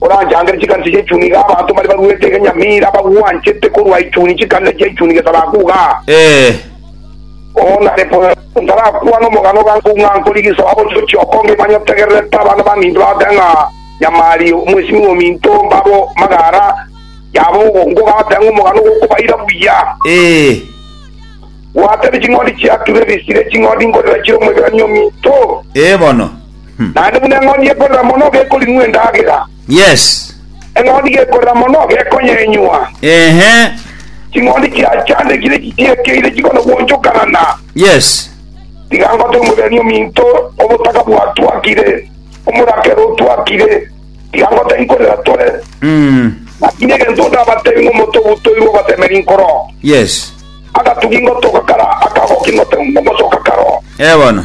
Oranchandere chikanisa chia echuni iga abanto baria baruete egenyamira bagwanchete korwa echuni chikanisa chia echuni gesabaku igaa. Ee. Oo nare bono ntarakwane omogano iga nko ng'a nkori gesabaku ochio chioko ngeimanye otegererete abana baminto bagote ng'a nyamari omwesimigwa ominto mbabo magara yabo ogonko gagote ng'a omogano gokobaira buya. Ee. Gwatebe ching'ondi chiaku ibe bisire ching'ondi nkorera chire omwegerania ominto. Ee bono. Naende buna eng'ondi ekorera mono gekoring'wa endagera, Yes. eng'ondi gekorera mono gekonyenywa. Ehe. Ching'ondi chiachandekire chichiekeire chikonogwonchokanana. Yes. Tiga ngote omogeni ominto, obotaka bwatwakire, omorakero otwakire, tiga ngote nkorera tore, Mm. naki negento ondabatebi ng'a omote obutoirwe obatemeri nkoro. Yes. Agatugi ngotoka kara akagoki ngote ngosoka karo. Ee bono.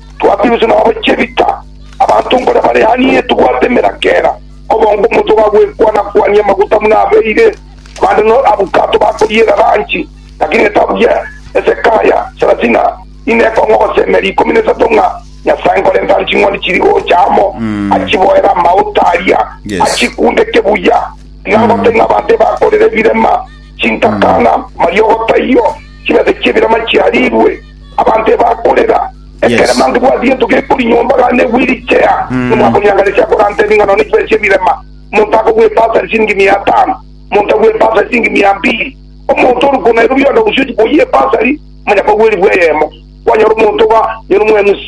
Twatibusu na babochie bita, abanto nkore bare hanie tobwate emeraka era, obonge omonto gagwekwana-kwania amaguta buna abeire, abande no abukato bakoyiera ranchi, lakini netabuya esekaya sarasina ine ekong'o gose emeri ikomi nesato ng'a Nyasae nkorentare ching'ondi chiri gocha amo, achiboere amauta aria, achikundeke buya. Tiga ngote ng'a abanto ebakorera ebirema, chintakana, mariogo taiyo, chimesa chi'ebirema chiarirwe, Abanto ebakorera ekerema ngibwati gento gekori nyomba gana negwe richea, nomwakonyanganera chiakoranta ebing'anao ne chibesa ch'ebirema. Omonto akogwa epasa ase chiringi mia etano, omonto agwe epasa ase chiringi mia mbiri. Omonto ore ko Nairobi yonde gose ochia koyia epasa aria, manya kwagwa eribu eyemo. Kwanyora omonto iga, nyora omo MC,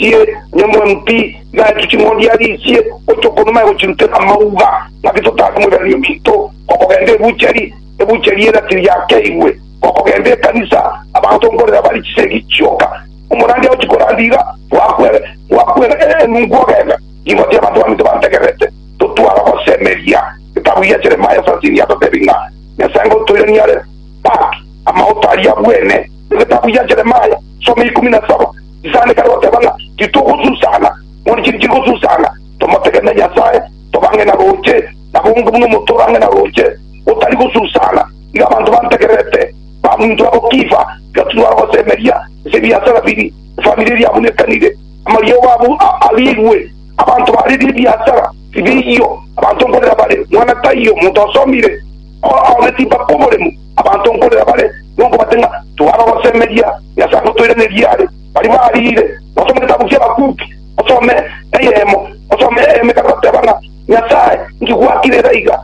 nyora omo MP, iga aetwe ching'ondi arisie, gocha okoro nomanye gochirutera amauga, ng'aki totare moiranerio minto, okogenda ebuchari, ebuchari eratiri yakeigwe. Gokogenda ekanisa, abanto nkorera bare chisegi chioka. Omorandia ochi korandia iga, Gwakwera, gwakwera, ee, ninkwogenga, nigo tiabatwamete bantegererete. Totwara gosemeria getabu gia Jeremia sasini atotebi ng'a Nyasae ngotoire niare Back amaoto aria abwene. Egetabu gia Jeremia, some ikumi na saba, chisande kare goteba ng'a titogosusana, mori chiri chigosusana, tomotegenere Nyasae, tobang'e na roche, nabonge buna omoto orang'e na roche, gotari gosusana. Iga abanto bantegererete, baminto abo Kifa, iga tibara gosemeria ase ebiasara bibi, efamiri eria abwo nekanire, amariogo abo arigwe, abanto baaririe ebiasara bibiyio, abanto nkorera bare mwana taiyo omonto osomire, ababe timbakwa oboremu, abanto nkorera bare nonkobate ng'a tibara gosemeria Nyasae agotoiranerie are, baria bariire, basome getabu ki'abakuuki, basome eyemo, basome eyemo ekare bateba ng'a, Nyasae, inki gwakire era iga?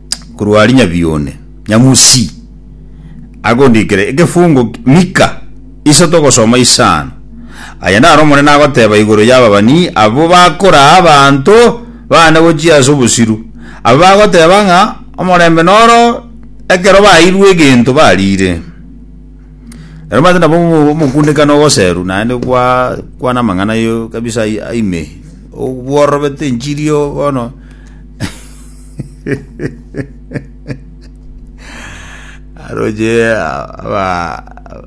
korwa aria Nyabione Nyamusi agondikera ekefungo Mika iso togosoma isano. Aya naro Omonene agoteba igoro y'ababani abwo bakoraa abanto baane gochia ase obosiru, abwo bagoteba ng'a omorembe noro ekero baeirwe egento bariire. Ere omanyete nabo omokundekano ogoseru naende gwakwana amang'ana kabisa ime, obworobete enchiri bono. aroche aba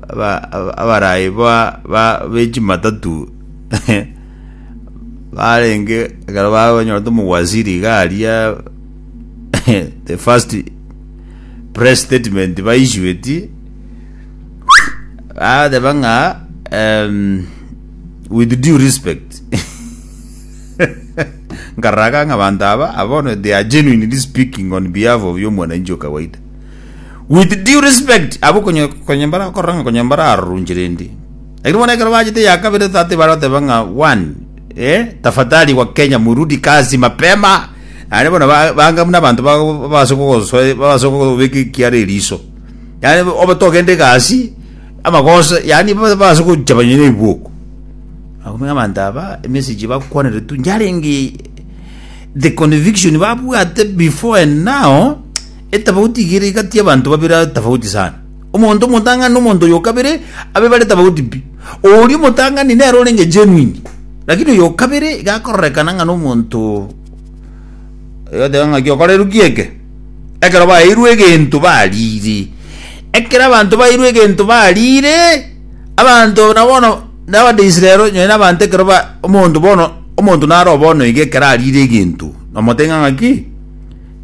aba aba- abarai ba ba bechimatatu barenge ekero bakonyora tomogwasiri garia the first press statement baisueti bateba ng'a em, with due respect Nkararaga ng'a abanto aba are bono they are genuinely speaking on behalf of y'omwananchi o kawaida. With due respect, abwo konye konye mbarakorora ng'a konye mbararorunche rende. Lakini bono ekero bachete ya kabere tata tibare goteba ng'a one, eh, tafadhali wa Kenya murudi kazi mapema. Naende bono ba- banga buna abanto ba- babase kogosoe babase kogobeka ekiara eriso. Yaani obe togende egasi amagoso yaani babase gochaba nonya na ebwoko. Akomenya abanto aba emesegi bakwaneretwe yarenge the conviction babwate before and now etafauti igere igati y'abanto babere tafauti sana omonto omotang'ani omonto oyo kabere abe bare tafauti pi oria omotang'ani nero orenge genuine lakini oyo kabere gakororeka ng'a n'omonto egoteba ng'a giokorerwe gieke ekero baeirwe egento barire ekero abanto baeirwe egento barire. Abanto na bono n'Abaisraeli onye nonya abanto ekero ba omonto bono omonto naro bono iga ekero arire egento nomotebia ng'a ng'aki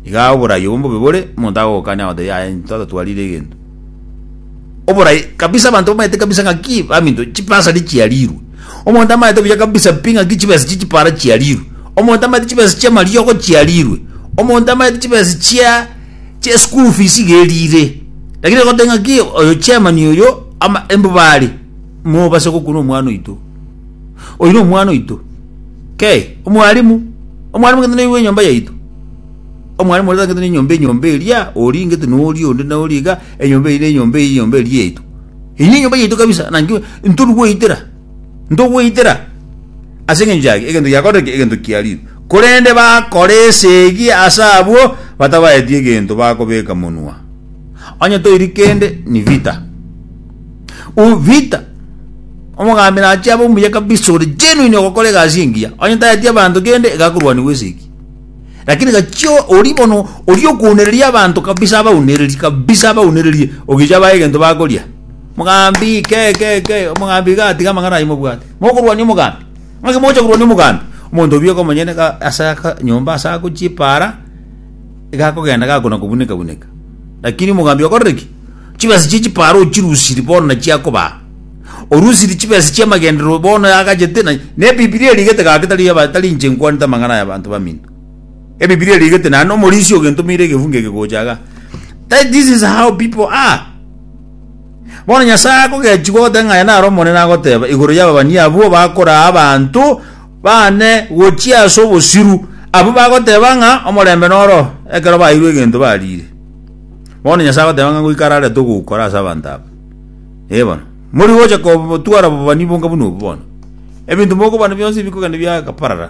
iga oborai obo mbobe bore omonto agogokania agotebi aye tata twarire egento oborai kabisa abanto bamaete kabisa ng'aki baminto chibasari chiarirwe omonto amaete buya kabisa pi ng'aki chibesa echi chipara chiarirwe omonto amaete chibesa chi'amariogo chiarirwe omonto amaete chibesa chia. Chie school fees iga erire. Lakini egoteba ng'aki oyo chairman oyo ama embobare mobase gokuna omwana oito. Oyo na omwana oito. Kei, omwalimu, omwalimu gete noyo bwa enyomba yaito. Omwalimu ore tagete ne enyomba enyomba eria, ori ngete na ori onde na ori iga, enyomba eye na enyomba eye enyomba eria yaito. Eye ne enyomba yaito kabisa, naki ntoru goitera. Ntogweitera ase engencho yake egento giakorire ki? Egento kiariirwe. Korende bakora esegi ase abwo batabaeti egento bakobeka monwa. Onye toiri kende ni Vita. U Vita omogambi nache abe omuya kabisa ore genuine ogokora egasi engiya. Onye taeti abanto kende iga akorwanigwa esegi. Lakini gachio ori bono ori okounereria abanto kabisa abaunererie kabisa abaunererie ogicha abae egento bakoria. Mogambi, ke, ke, ke, omogambi iga tiga amang'ana ayio mobwate. Mokorwania omogambi. Ng'aki mogocha korwania omogambi? Omonto obieka omonyene ga ase aka nyomba ase ako chipaara iga akogenda gakona kobuneka buneka. Lakini omogambi okorire ki? Chibesa chie chipaara ochirusiri bono nachio akobaa. Orusiri chibesa chia amagenderero bono agachete na ne Bibilia erigete gaki tari aba tari inche nkwanete amang'ana aya abanto baminto. Ebibilia erigete naende omorisia ogentomeire egefungo eke gocha iga. That this is how people are. Bono Nyasae akogechigwa goteba ng'a aye naro Omonene agoteba igoro y'ababani abwo bakoraa abanto bane gochia ase obosiru, abwo bagoteba ng'a omorembe noro ekero baeirwe egento bariire. Bono Nyasae agoteba ng'a ngoika ararete ogokora ase abanto aba. Ee bono, mori gocha kotwara obobani bonka buna obo bono. Ebinto mokobana bionsi bikogenda biagaparara.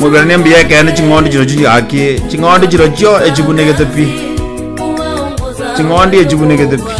Moiboranie mbuya ekeene ching'ondi chirochio chigakie, ching'ondi chirochio echibunegete pi, ching'ondi echibunegete pi.